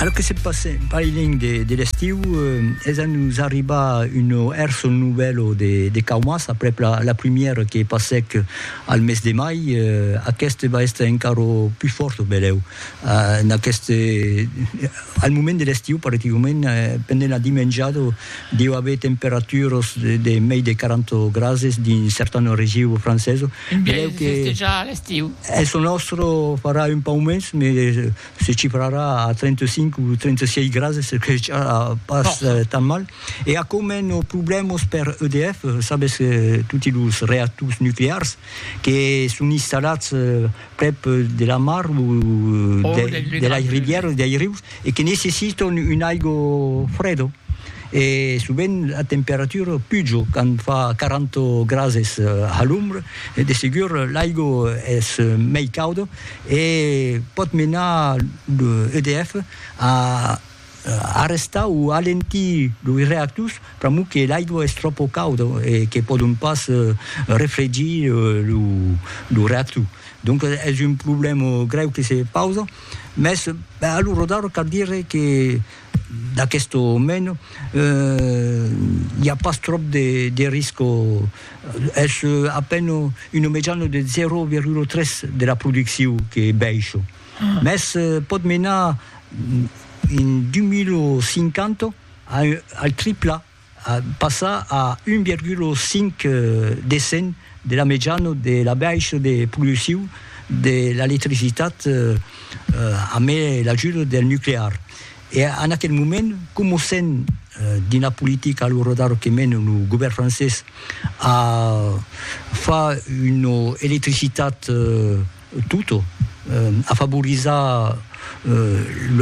Alò que se passe bailènh de l'estiu, es a nos arribar un hèrso novèlo de Caumas, aprèp la primièra que passèc al mes de mai, aqueste va èster encara pus fòrt o belèu. Al moment de l'estiu, practicament, pendent la dimenjada, deu aver temperaturas de mei de 40 grases dins certana regiu francesa, Un biais de festejar l'estiu. Eth nòstre farà un pauc mens, me se chifrarà a 35 o 36 grases, se que ja pas tan mal. E aquò mèn o problèmas per EDF, sabes que toti los reactors nuclears que son installats prèp de la mar o de lei rivièras, dei rius, e que necessiton un aigo fredo e sovent la temperatura pujo quand fa 40 grases a l'ombra de segur l'aigo es mei cauda e pòt menar lo EDF a arrestar o alentir los reactors pr'amor que l'aigo es tròpo cauda e que pòdon pas refregir lo reactor donc es un problèma grèu que se pausa. Mès, ben, a lo rodar cal dire que d'aqueste moment i a pas tròp de, de risco, es a peine una mejana de 0,3 de la produccion que baisha, mès pòt menar en 2050 al tripla. passar a 1,5 de cent de la mejana de la baixa de produccion de l'electricitat amé l'ajuda del nuclear. E en aquel moment, coma sent dins la politica lo rodado que mena lo govèrn francés a far una electricitat Tutto, afavorizar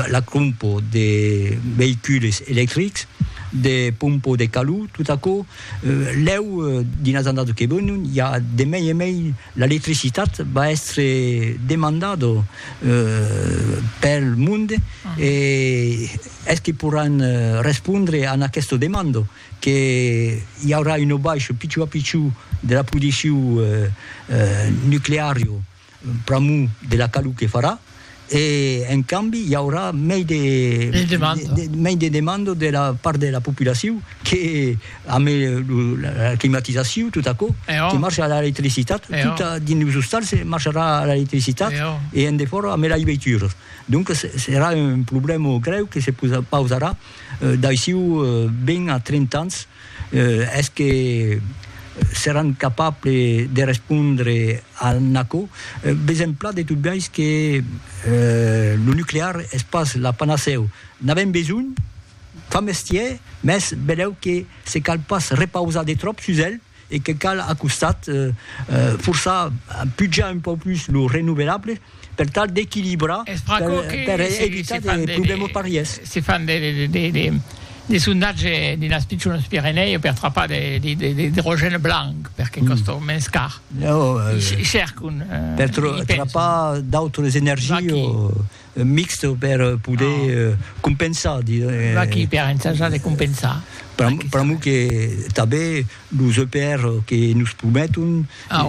la crompo de veicules electrics, de pompo de calor, tot aquò, lèu dins las annadas que venon i a de mei e mei l'electricitat va èstre demandada pel monde e es que poràn respondre a aquesta demanda? que i aurà un aubaish pichou a pichou de la prodicciu nucleario pr'amor de la calor que farà e en cambi i aurà mei de mei de demanda de la part de la populaciu que ame la climatizaciu tot aquò que marcha a l'electricitat tot dins los ostals marcharà a l'electricitat e en defòra ame lei veituras donc serà un problèma grèu que se pausarà D'aiçiu ben a 30 ans, es que seràn capable de respondre a n'aquò? Ves emplat de tot biais que lo nuclear es pas la panacèu. N'avèm besonh? Fa mestièr, mès belèu que se cal pas repausar de tròp sus el. e que cal a costat forçar pujar un pauc plus lo renovelable per tal d'equilibrar per evitar de problèmas parièrs. Se fan de sondatge dins las pichonas Pirenèu per trapar de l'idrogène blanc perque còsta mens car. I cercan. Per trapar d'autras energias. Mixt per poder compensar. Pas qui per ensajar de compensar. Pr'amor que tanben los EPR que nos prometon,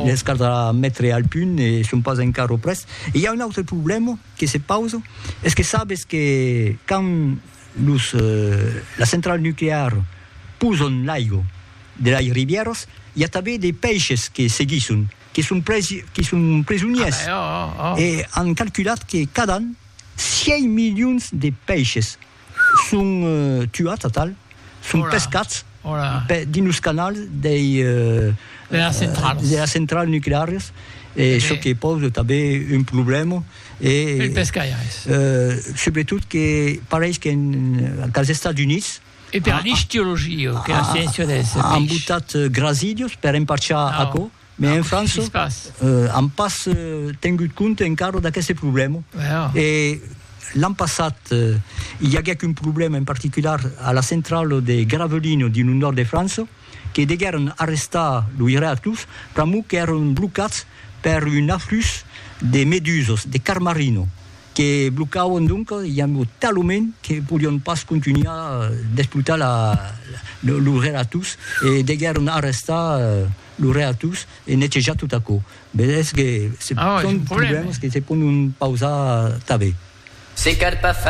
les caldrà metre al punt e son pas encara près. E i a un autre problèma que se pausa, es que sabes que quand los las centrals nucleares posan l'aiga de las rivièras, i a tanben de peishes que seguisson. que son presi, que son presoniers, ah, oh, oh, oh. e an calculat que cada an 6 milions de pèishes son uh, tuats a tal, son Hola. pescats Hola. Pe, dins los canals dei, uh, de las centrals, de las centrals nucleares, e eh. çò que pose tanben un problèma e el pescaires. Uh, sobretot que pareis que en, als Estats Units E per l'istiologia, que la sciéncia des peish. An botat grasidios per emparchar aquò, mès en França an pas tengut compte encara d'aqueste problèma. E l'an passat i aguèt un problèma en particular a la centrala de Gravelines dins lo nòrd de França, que deguèron arrestar los reactors pr'amor qu'èran blocats per un aflux de medusas, de carmarino, que blocàvon donc i amb lo talament que podion pas contunhar d'esplotar la lo relatús e deguèron arrestar lo relatús e netejar tot aquò. Vedètz que se pònt problèmas que se pòdon pausar tanben. Se cal pas